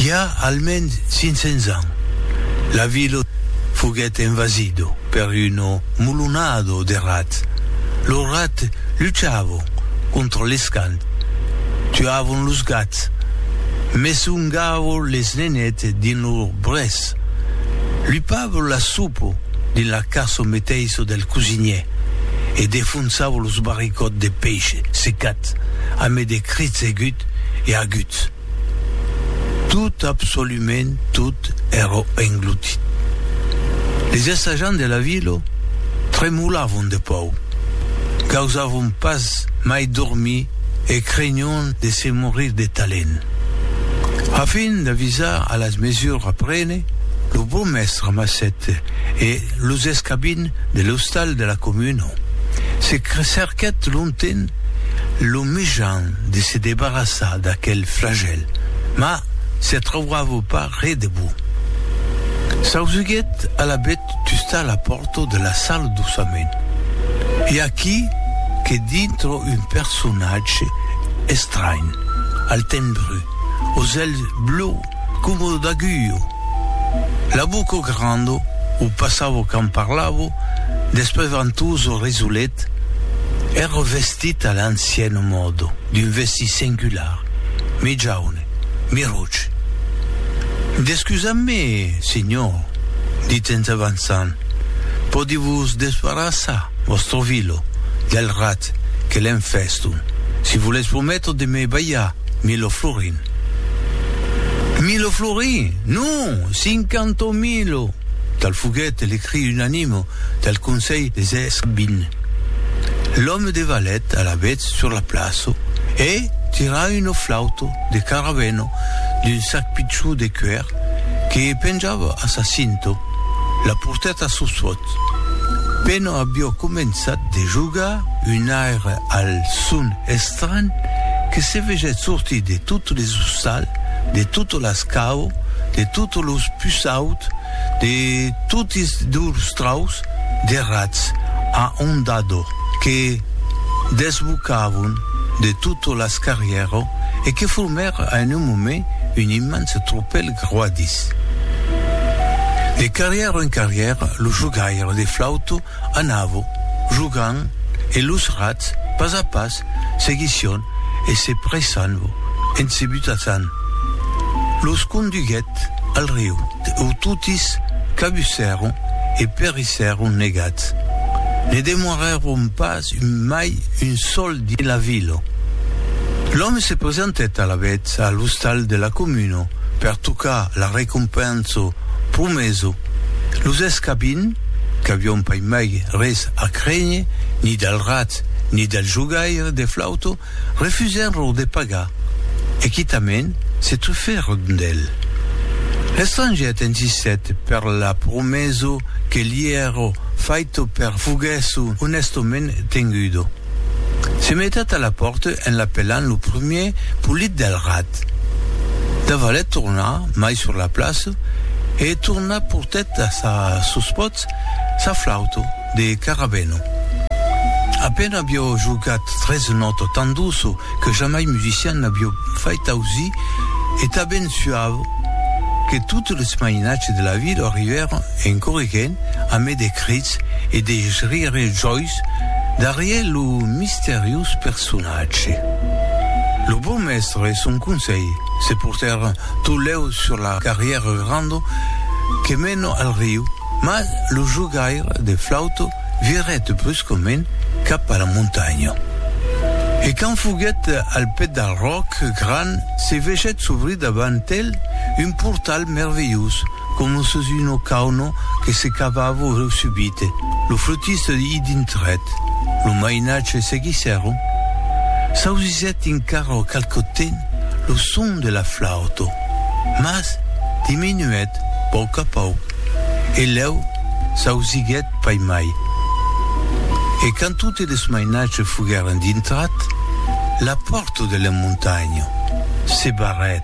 I a almens 500 ans, la vila foguèt envasida per una mulonada de rats. Los rats luchavan contra les cans, tuavan los gats, mesungavan les nenets dins lor brès, lupavan la sopa dins la casa meteissa del cosinièr e defonsavan los barricòts de peish secat amé de crits aguts e aguts. Tot, absolument tot, èra englutit. Les assajants de la vila tremolavon de paur, gausavon pas mai dormir e crenion de se morir de talent. A fin d'avisar a las mesures a prene, lo burmèstre amassèt e los escabins de l'ostal de la comuna. Se cerquèt longtemps lo mijan de se debarrassar d'aquel flagèl, mas se trauava pas re de bon. S'ausuguèt alavetz tustar la pòrta de la sala doçament. I a aquí que dintra un personatge estranh, al tenh brut, aux ailes bleu Coma o d'agulho. La boca o grando, o passavo quand parlavo, despais ventós o resolet, èra vestit a l'ancian mòde, d'un vestit singular, mi jaune, mi roge. Descusam-me, senhor, dit en s'avançant, pòdi vos desbarrassar, vòstre vilo, del rat que l'enfèston, si volètz prometre de me balhar 1000 florins. Milo Flori, non, cinquanta milo, tal foguèt le cri unanime del conselh des escrivins. L'òme de Valet alavetz sur la plaça e tira una flauta de caravena d'un sac pichon de cuèr que penjava a sa cinta, la portèt a Sossuòt. Pena aviá començat de jogar un aire al son Estranh que se vegèt sortir de totes les ostals, de totes las caus, de totes los pusauts, de totis lors traucs de rats a ondador que desbocavon de totes las carrièras e que formèra en un moment un immense tropèl groadís. De carrièra en carrièra, lo jogaire de flauta Anavo jogant e los rats, pas a pas, seguission e se pressanvo en se butassant. Los conduguèt al riu, ou totis cabussèron e perissèron negats. Ne demorèron pas mai un sol dins la vila. L'òme se presentèt alavetz a l'ostal de la comuna per tocar la recompensa promesa. Los escabin, qu'avion pas mai res a crénher ni del rat ni del jogaire de flauto, refusèron lo de pagar e quitament se trufèron d'el. L'estranget insistèt per la promèso que li èro faito per fuguèsso onèstament tengudo. Se metat a la pòrta en l'apelant lo primier polit del rat. Davalet torna mai sur la plaça e torna portèt a sa sospòt sa flauta de carabeno. A pena avió jogat tres nòta tan doça que jamai musician n'avió fait ausir e tanben suava que totes les mainatges de la vila arribèron en corriguent amé de crits e de rires jòis Jesús darrier lo misteriós personatge. Lo Bon Mèstre e son conselh se portèron tot lèu sur la carrièra granda que mena al riu, mas lo jogaire de flauta virèt bruscament cap a la montanha. E quand foguèt al pèd del ròc gran, se vegèt s'obrir davant el un portal merveillós, Coma sus una cauna que se cavava subite, lo flotista i dintrèt. Lo mainatge seguissèron. S'ausissèt encara qualque temps lo son de la flauta, mas diminuèt pauc a pauc e lèu s'ausiguèt pas mai. E quand totes los mainatges foguèron dintrat, la pòrta de la montanha se barrèt.